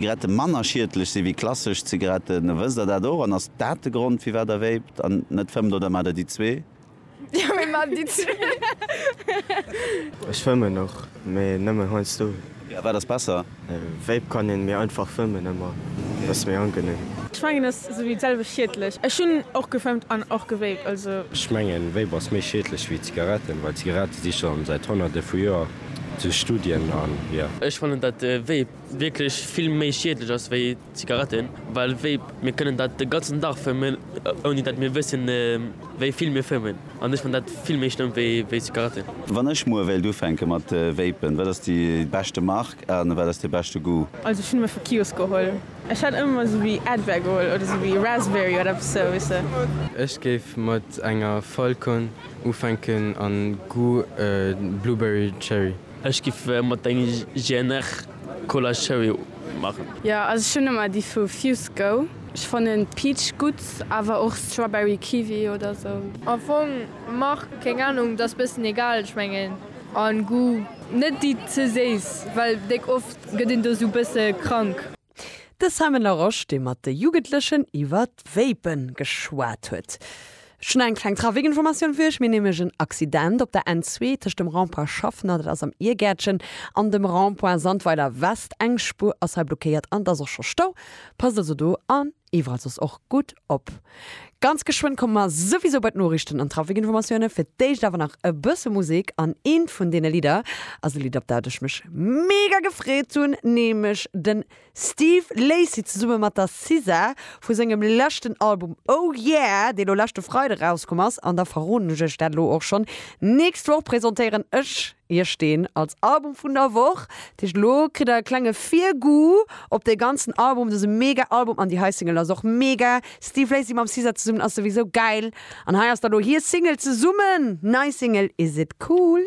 Zigaretten manner schiedlech si wéi klassesch Zigaretten. Wësst der dat och? An ass dat de Grond firwat der véipt? An net fëmmt oder mat der déi zwee? Jo, mir man déi zwee. Ech fëmmen och, mee nëmmen heiansdo. A wat ass besser? Véip kann een, mee einfach fëmmen ëmmer, dat ass méi angenehm. Ech mengen ass sou wéi d'selwecht schiedlech. Ech hunn och gefëmmt an och gevéipt, also. Ech mengen Véip ass méi schiedlech wéi Zigaretten, well Zigarette si schon säit honnerte vu Joer zu Studien an jo. Ech fannen dat Véip wierklech vill méi schiedlech ass wéi Zigaretten, well Vape, mir kënnen dat de ganzen Dag fëmmen, ouni datt mir wëssen, wéi vill mir fëmmen. An ech fann dat vill méi schlëmm wéi Zigaretten. Wann ech muer wéilt ufänke mat Vapen, wat ass déi beschte Mark a wat ass de beschte Goût? Also ech hunn ëmmer vu Kiosk geholl. Ech hätt ëmmer esou wéi Advair geholl oder esou wéi Raspberry oder eppes esou, weess de. Ech géif mat enger Falcon ufänken a Goût Blueberry Cherry. Ech giff mat denger GNR Cola Cherry machen. Jo also ech hun emmer déi vu Fuse Go. Ech fannen Peach gudd awer och Strawberry Kiwi oder sou. Am Fong Mark keng Ahnung, dass bessen egal ech mengen an Goût. Net déi ze séiss, well déck oft get een do sou bessen krank. De Simon Larosche, dee mat de Jugendlechen iwwer d'Vape geschwat huet. Ech hunn eng kleng Trafikinformatioun fir Iech. Mir hunn nämlech en Accident op der N2 tëscht dem Rond-point Schaffner, dat ass am Iergäertchen, an dem Rond-point Sandweiler West. Eng Spuer ass hei blockéiert an et ass och scho Stau. Passt also do an. Iwwerall soss och gutt op. Ganz geschwënn komme mer souwisou bei d'Noriichten an d'Trafikinformatioune. Fir d'éischt awer nach e bësse Musek an eent vun deene Lidder ass e Lidd, op dat ech mech mega gefreet hunn, nämlech de Steve Lacy zesumme mat der SZA vu sengem leschten Album Oh Yeah! dee lo leschte Freide rauskomm ass. An da verroden ech iech dat elo och schonn, Nächst Woch presentéieren ech Hie steen als Album vun der Woch. Dat heescht elo kritt der e klenge Virgoût op dee ganzen Album. Dat ass e mega Album an déi hei Single ass och mega. Steve Lacy mam SZA zesummen ass souwisou gäil an hei ass da elo hir Single zesummen. Nei Single Is It Cool?